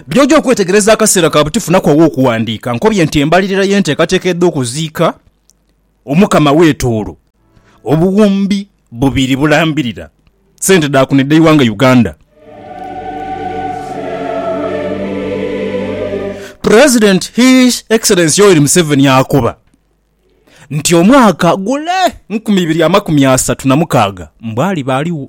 By'oja okwetegereza akaseera ka buti funako aw'okuwandiika. Nkobye nti embalirira y'enteekateeka edh'okuziika Omukama w'etoolo obuwumbi bubiri bulambirira sente dha kuno edh'eighanga Uganda. President His Excellency Yoweri Museveni akoba nti omwaka gule nkumi ibiri amakumi asatu na mukaaga mbu aliba aligho.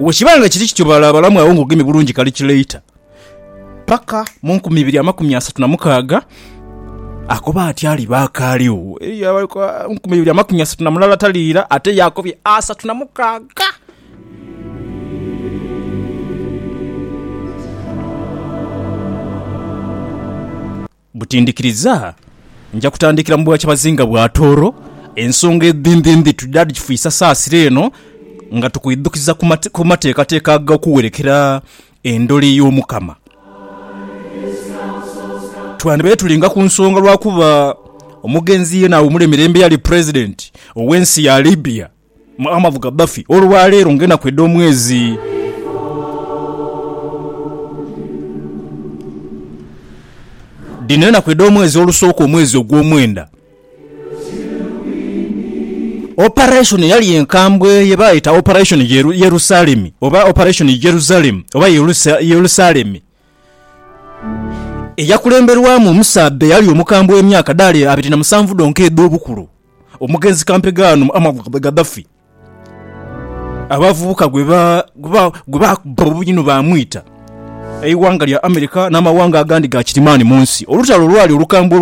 Bwe kiba nga kiri kityo, balaabalamu agho ng'ogemye bulungi kalikileita. Paka mu nkumi ibiri amakumi asatu na mukaaga, akoba ati aliba akaaligho. Eriyo abaliku ah, nkumi ibiri amakumi asatu na mulala taliira, ate ye akobye asatu na mukaaga. Buti ndhikiriza nja kutandikira mu bwakyabazinga bwa Tooro, ensonga edhindhindhi tujja dhikifuisa saasira eno nga tukwidhukiza ku mateekateeka ag'okuwerekera endhole y'Omukama. Twandibaire tulinga ku nsonga lwakuba omugenzi yeena awumule mirembe eyali Pulezidenti ow'ensi ya Libya. Amavuga bafi olwa leero nga enaku edh'omwezi. Dhino enaku edh'omwezi olusooka omwezi ogw'omwenda. Operation eyali enkambwe ye baayeta Operation Yerusalemi oba Operation Jerusalem oba Yerusalemi eyakulemberwamu omusaadha eyali omukambwe emyaka dhaali abiri na musanvu dhonka edh'obukulu. Omugenzi kampegaano Muammar Gaddafi abavubuka gwe baakubba obuyi ni baamwita eighanga lya America n'amawanga agandi ga kirimaani mu nsi. Olutalo olwali olukambwe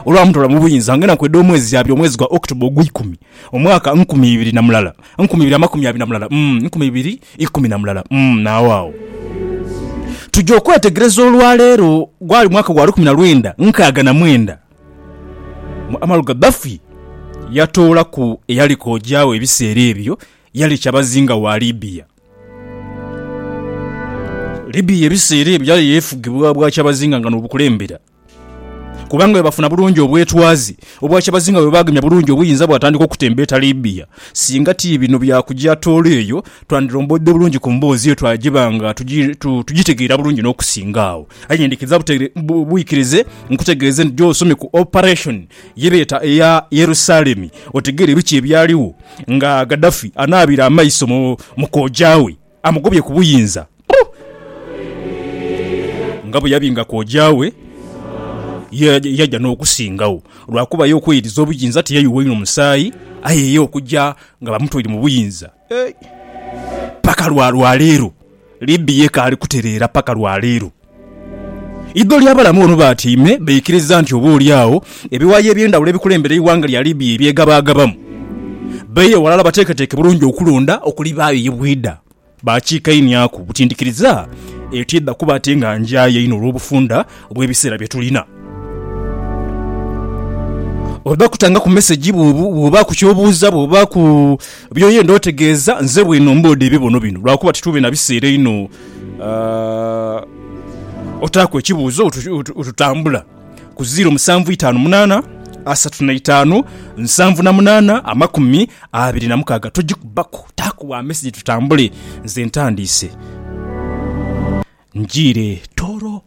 olwamutola mu buyinza nga enaku edh'omwezi yaabya omwezi gwa October ogweikumi omwaka nkumi ibiri na mulala nkumi ibiri amakumi abiri na mulala nkumi ibiri ikumi na mulala n'agho agho tuja okwetegereza olwaleero. Gwali mwaka gwa lukumi na lwenda nkaaga na mwenda. Muamaru Gaddafi yatoolaku eyali kooja we ebiseera ebyo yali kyabazinga wa Libya. Libya ebiseera ebyo yali yefugibwa bwakyabazinga nga n'obukulembera kubanga bwebafuna bulungi obwetwaze, obwakyabazinga bwebagemya bulungi obuyinza bwatandika okutembeeta Libya. Singa ti bino bya kuja toolo eyo twandilombodde bulungi ku mboozi eyo twagiba nga tugitegeera bulungi n'okusinga agho. Aye nyendhikiriza bwikirize nkutegeeze nti gy'osomye ku operation ye beeta eya Yerusalemi otegeere biki ebyaligho nga Gaddafi anaabira amaiso mu kooja we amugobye ku buyinza nga bwe yabinga kooja we ye yaja n'okusingagho lwakuba ye okweyiriza obuyinza tiyayuwa inho musaayi aye ye okuja nga bamutoire mu buyinza. Paka lwa lwa leero. Libby yeka ali kutereera paka lwa leero. Idho ly'abalamu ono batyaime baikiriza nti oba oli agho ebiwayi eby'endhawulo ebikulembera eighanga lya Libya ebyegabaagabamu baire aghalala bateeketeeke bulungi okulonda okulibaayo ye bwidha. Baakiikainiaku butindhikiriza etiidha kuba ate nga njaaya inho olw'obufunda bw'ebiseera bye tulina. Oba kutanga ku mesegi, bw'oba ku ky'obuuza, bw'oba ku by'oyenda otegeeza, nze bwino mboodha ebibono bino lwakuba titube na biseera inho otaaku ekibuuzo otutambula ku ziiro musanvu itaanu munaana asatu na itaanu nsanvu na munaana amakumi abiri na mukaaga. Togikubaku, taaku wa mesegi tutambule. Nze ntandiise. Njiire Tooro.